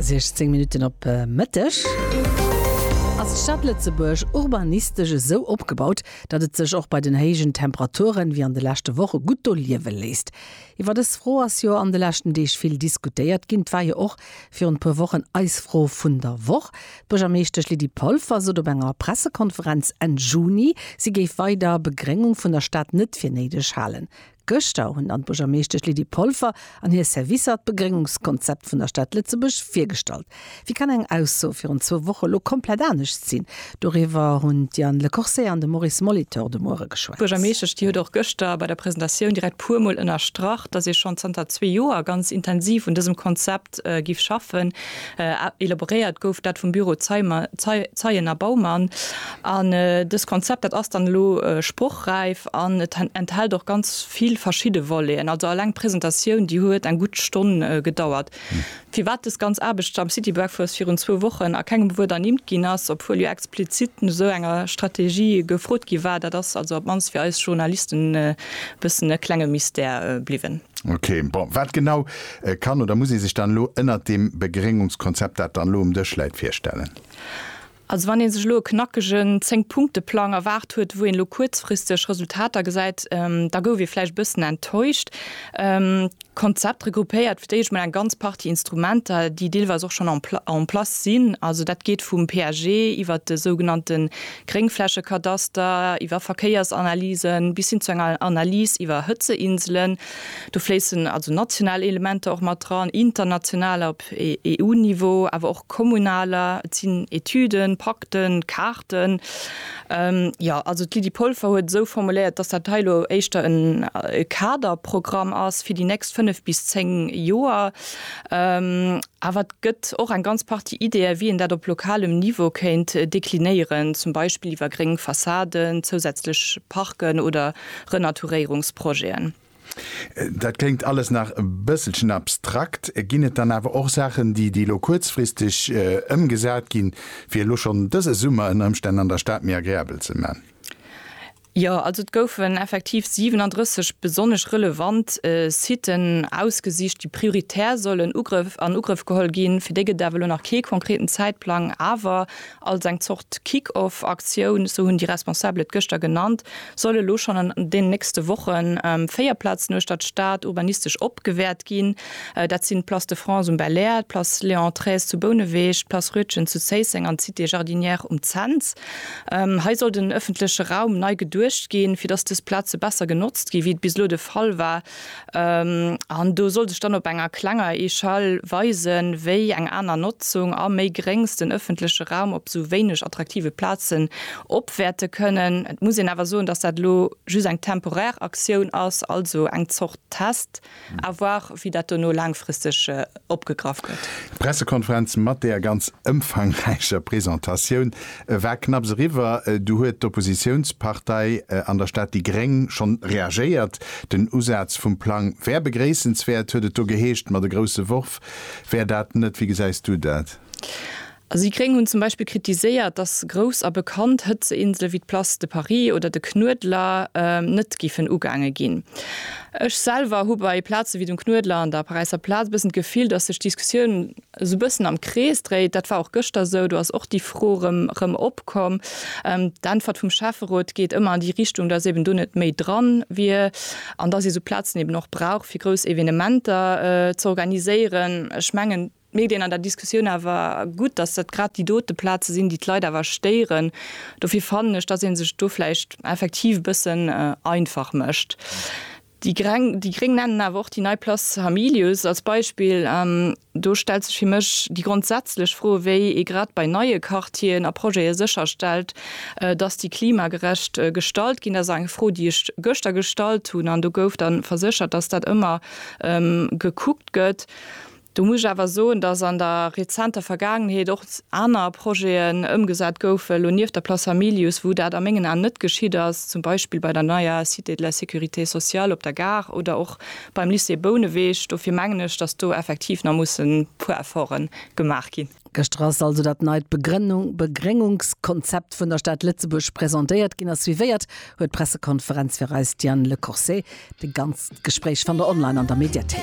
16 Minutten op e Mëtteg. Ass d'Stad Lëtzebuerg urbanistesch esou opgebaut, datt et sech och bei den héijen Temperaturen, wéi an de leschte Woche, gutt do liewe léisst? Iwwer dës Fro ass jo an de leschten Deeg vill diskutéiert ginn. Et war jo och virun e puer Wochen eis Fro vun der Woch. D'Buergermeeschtesch Lydie Polfer sot op enger Pressekonferenz Enn Juni, si géif weider Begréngung vun der Stad net fir néideg halen. Gëschter hunn dann d'Buergermeeschtesch Lydie Polfer an hir Servicer d'Begréngungskonzept vun der Stad Lëtzebuerg virgestallt. Wéi kann eng Ausso virun zwou Woche elo komplett anescht sinn? Doriwwer hunn d'Diane Lecorsaire an de Maurice Molitor de Muere geschwat. D'Buergermeeschtesch, déi huet och gëschter bei der Presentatioun direkt puer Mol ënnerstrach, datt ee schonn zanter zwee Joer ganz intensiv un dësem Konzept giff schaffen. Elaboréiert gouf dat vum Büro Zeien a Baumann. An dëst Konzept, dat ass dann elo sprochräif an et enthält och ganz vill verschidde Voleten. Also alleng d'Presentatioun, déi huet eng gutt Stonn gedauert. Firwat dës ganz Aarbecht am City Breakfast virun zwou Wochen a kengem Wuert ernimmt ginn ass, obwuel jo explizit no esou enger Strategie gefrot gi war, dat ass also op d'mannst fir eis Journalisten e bëssen e klenge Mystère bliwwen. Ok, bon, wat genau E kann oder muss ee sech dann elo ënnert deem Begréngungskonzept, dat dann elo um Dësch läit, virstellen? Also wann ee sech elo e knackegen Zéng-Punkte-Plang erwaart huet, wou een elo kuerzfristeg Resultater gesäit, da gouf ee vläicht e bëssen enttäuscht. D'Konzept regroupéiert fir d'éischt mol eng ganz Partie Instrumenter, déi deelweis och schonn en place sinn. Also dat geet vum PAG iwwert de sougenannte Gréngflächekadaster, iwwer Verkéiersanalysen bis hin zu enger Analys iwwer Hëtzeinselen. Do fléissen also national Elementer och mat dran, internationaler op EU-Niveau, awer och kommunaler. Et sinn Etüden, Pakten, Kaarten. Jo, also d'Lydie Polfer huet et esou formuléiert, dass dat hei elo éischter e Kaderprogramm ass fir déi nächst fënnef bis zéng Joer. Awer et gëtt och eng ganz Partie Ideeë wéi een dat op lokalem Niveau kéint deklinéieren, zum Beispill iwwer gréng Fassaden, zousätzlech Parken oder. Renaturéierungsprojeten. Dat kléngt alles nach e bësselchen abstrakt. Ginn et dann awer och Saachen, déi déi elo kuerzfristeg ëmgesat ginn, fir elo schonn dëse Summer ënner Ëmstänn an der Stad méi agreabel ze man? Jo, also et goufen effektiv 37 besonnesch relevant Siten ausgesicht, déi prioritär sollen an Ugrëff geholl ginn. Fir déi gëtt et awer elo nach kee konkreten Zäitplang. Awer Als eng Zort Kick-off-Aktioun, sou hunn déi Responsabel et gëschter genannt, solle lo schonn an deenen nächste Woche véier Plazen uechter d'Stad urbanistesch opgewäert ginn. Dat sinn d'Place de France um Belair, d'Place Léon Trees zu Bouneweg, d'Place Rütgen zu Zéisseng an d'Cité Jardinière um Cents. Hei soll den ëffentleche Raum nei geduecht ginn, fir datt dës Plaze besser genotzt ginn, wéi et bis elo de Fall war. An do soll sech dann op enger klenger Echelle weisen, wéi eng aner Notzung a méi gréngs den ëffentleche Raum op esou wéineg attraktive Plazen opwäerte kënnen. Et muss een awer soen, dass dat elo just eng temporär Aktioun ass, also eng Zort Test, à voir, wéi dat dono laangfristeg opgegraff gëtt. D'Pressekonferenz mat där ganz ëmfangräicher Presentatioun war knapps eriwwer, du huet d'Oppositiounspartei an der Stad déi Gréng schonn reagéiert. Den Usaz vum Plang wär begréissenswäert, huet et do geheescht, ma de grousse Worf wär dat net. Wéi gesäis du dat? Si gréng hunn zum Beispill kritiséiert, datt grouss a bekannt Hëtzeinsele wéi d'Place de Paris oder de Knuedler net giffen ugaange ginn. Ech selwer hu bei Plaze wéi dem Knuedler an der Paräisser Plaz e bëssen d'Gefill, datt sech d'Diskussioun esou e bëssen am Krees dréit. Dat war och gëschter esou, do ass och déi Fro erëm opkomm. D'Äntwert vum Schäfferot geet ëmmer an déi Richtung, datt eben do net méi dran wier an datt ee sou Plazen eben och brauch fir grouss Evenementer z'organiséieren. Ech mengen. D'Medien an der Diskussioun awer gutt, dass dat grad déi dote Plaze sinn, déi d'Leit awer stéieren. Dofir fannen ech, dass ee sech do vläicht effektiv e bëssen einfach mécht. Déi Gréng nennen awer och déi nei Place Hamilius als Beispill. Do stellt sech fir mech déi grondsätzlech Fro, wéi ee grad bei neie Quartieren a Projete sécherstellt, dass déi klimagerecht gestalt ginn. Dat ass eng Fro, déi ech gëschter gestallt hunn an do gouf da verséchert, dass dat ëmmer gekuckt gëtt. Do muss ech awer soen, dass an der rezenter Vergaangenheet och aner Projeten ëmgesat goufen, elo nieft der Place Hamilius, wou dat a mengen Aen net geschitt ass, zum Beispill bei der neier Cité de la sécurité sociale op der Gare oder och beim Lycée Bouneweg. Dofir mengen ech, dass do effektiv nach mussen e puer Efforten gemaach ginn. Gëschter ass also dat neit Begréngungskonzept vun der Stad Lëtzebuerg presentéiert ginn a suivéiert huet d'Pressekonferenz fir eis d'Diane Lecourcey. De ganzt Gespréich fannt der online an der Mediathéik.